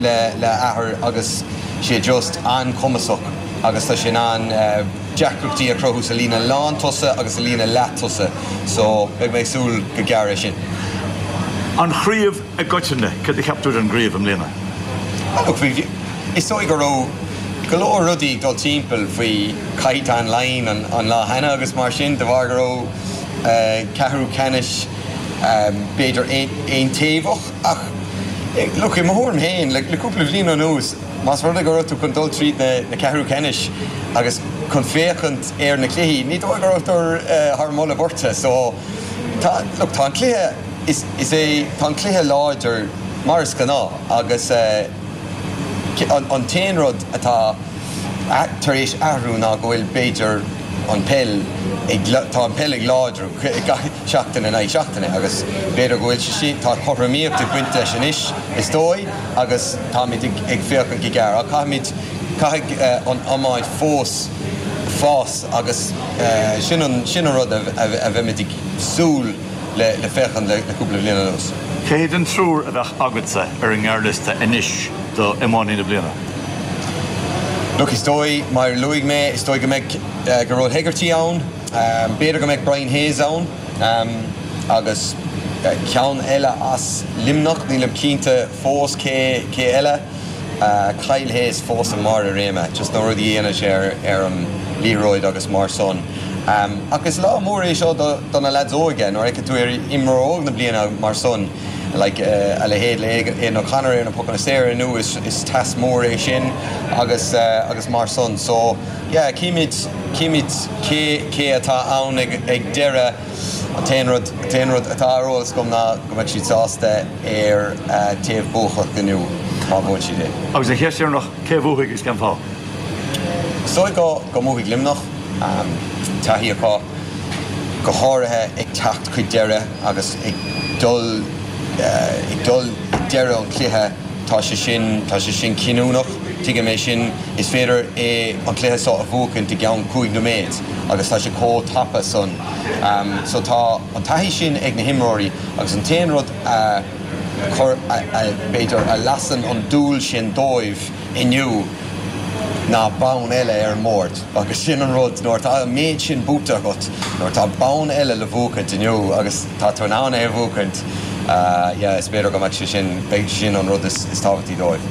le athair agus sé just an-chumasach agus tá sé in ann deacrachtaí a chruthú sa líne lán tosaigh agus sa líne leath tosaigh so beidh mé ag súil go géar air sin. An chraobh i gcoitinne, céard a cheap tú ar an gcraobh i mbliana? Look, bhí, is dóigh go raibh go leor rudaí ag dul timpeall faoi chaighdeán Laighean an lá cheana agus mar sin de bharr go raibh ceathrú ceannais b'fhéidir aontaobhach, Ach, look, i mo thuairim féin, le cúpla bhliain anuas, más rud é go raibh tú chun dul tríd na Ceathrú Ceannais agus chun féachaint ar na cluichí, ní dóigh go raibh tú thar moladh beirte. So, tá, look, tá an cluiche, is, is é, tá an cluiche láidir mar is gnáth agus an t-aon rud atá tar éis athrú ná go bhfuil, b'fhéidir, an pheil ag, tá an pheil ag láidriú. seachtain in aghaidh seachtaine agus b'fhéidir go bhfuil sé sin, tá cothromaíocht ag baint leis anois is dóigh agus táimid ag féachaint go géar, ach caithfimid, caithfidh an iomáint fós ag fás agus sin an, sin an rud a bheimid ag súil le féachaint le cúpla bhliain anuas. Cé hiad an triúr a bheadh agatsa ar an ngearrliosta anois do Iománaí na Bliana? Look, is dóigh, mar a luaigh mé, is dóigh go mbeidh Gearóid Hegarty ann. B'fhéidir go mbeadh Brian Hayes ann agus ceann eile as Luimneach, nílim cinnte fós cé eile. Kyle Hayes fós i mbarr a réime, just na rudaí a dhéanadh sé ar an liathróid agus mar san. Ach is lá mór é seo do na leaids óga, nuair a fheiceann tú imreoir óg na bliana mar san, like a leithéid le Aidan O'Connor ar na pocanna saora inniu, is teist mhór é sin agus mar san. So. yeah chímid chímid cé cé atá ann ag ag deireadh an t-aon rud t-aon rud atá ar eolas agam ná go mbeadh siad sásta ar an taobh buacach inniu má bhuann siad é. Agus an cheist dheireanach, cé a bhuafaidh agus cén fáth? Is dóigh go go mbuafaidh Luimneach. Taithí acu go háirithe ag teacht chuig deireadh agus ag dul ag dul deireadh an chluiche. Tá sé sin, tá sé sin cinniúnach, tuigim é sin. Is féidir é, an cluiche seo, a bhuachaint i gceann cúig noiméad agus tá sé comh tapa san. So tá an taithí sin ag na himreoirí agus an t-aon rud a, a, a, b'fhéidir, a lasann an dúil sin dóibh inniu ná bonn eile ar an mbord agus sin an rud, nuair atá an méid sin buaite agat, nuair atá bonn eile le bhuachaint inniu agus. Tá tú in ann é a bhuachaint. Yeah, is féidir go mbeadh sé sin, beidh sé sin an rud is tábhachtaí dóibh.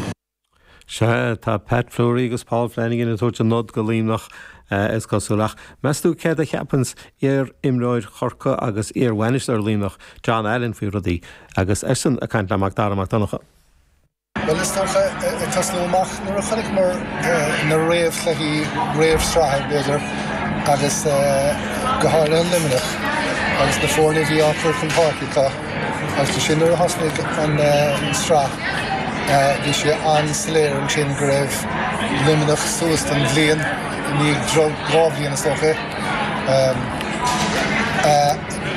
Sea, tá Pat Fleury agus Paul Flanagan ag tabhairt an nod go Luimneach, is cosúil. Ach meas tú céard a cheapanns iar-imreoir Chorcaí agus iar-bhainisteoir Luimneach, John Allen, faoi rudaí? Agus eisean ag caint le Macdara Mac Donncha. Bhuel, is dócha, ag tosnú amach, nuair a chonaiceamar na réamhchluichí réamhshraithe, b'fhéidir, agus go háirithe Luimneach agus na foirne a bhí á gcur chun páirce acu, agus ansin nuair a thosnaigh an tsraith, bhí sé an-soiléir ansin go raibh Luimneach suas don bhliain i ndiaidh dhá bhliain, is dócha.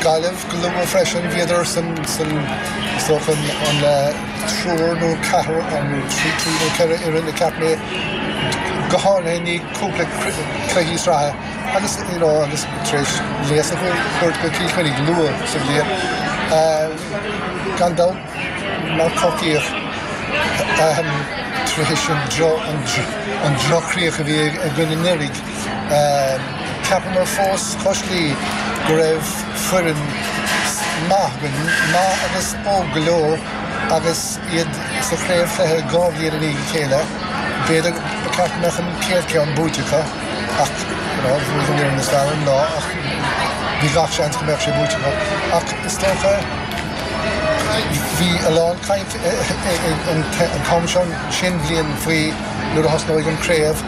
Gaillimh go luath freisin, bhíodar san, is dócha, an. Triúr nó ceathrar, an bhfuil trí nó ceithre fhoireann a cheap mé go háirithe, i gcúpla cluichí sraithe agus you know agus tar éis léas a thabhairt go Cill Chainnigh luath sa bhliain, gan dabht mar Chorcaíoch, ahem, tar éis an drochchríoch a bhí againn anuraidh. Cheapamar fós cois Laoi go raibh foireann maith againn, maith agus óg go leor agus iad sa chraobh fiche dhá bhliain i ndiaidh a chéile. B'fhéidir, ba cheart go mbeadh an chéad cheann buaite acu ach, you know, bhuail an fhoireann is fearr an lá ach ní gach seans go mbeadh sé buaite acu. Ach is dócha, bhí a lán cainte ansin sa bhliain faoi nuair a thosnóidh an chraobh,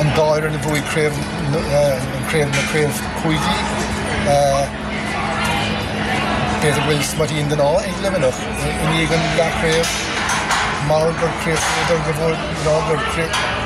an dáiríre a bheadh craobh na craobh cúigí. B'fhéidir go bhfuil smut den ádh ag Luimneach i ndiaidh an leathchraobh mar gur craobh go bhfuair ná gur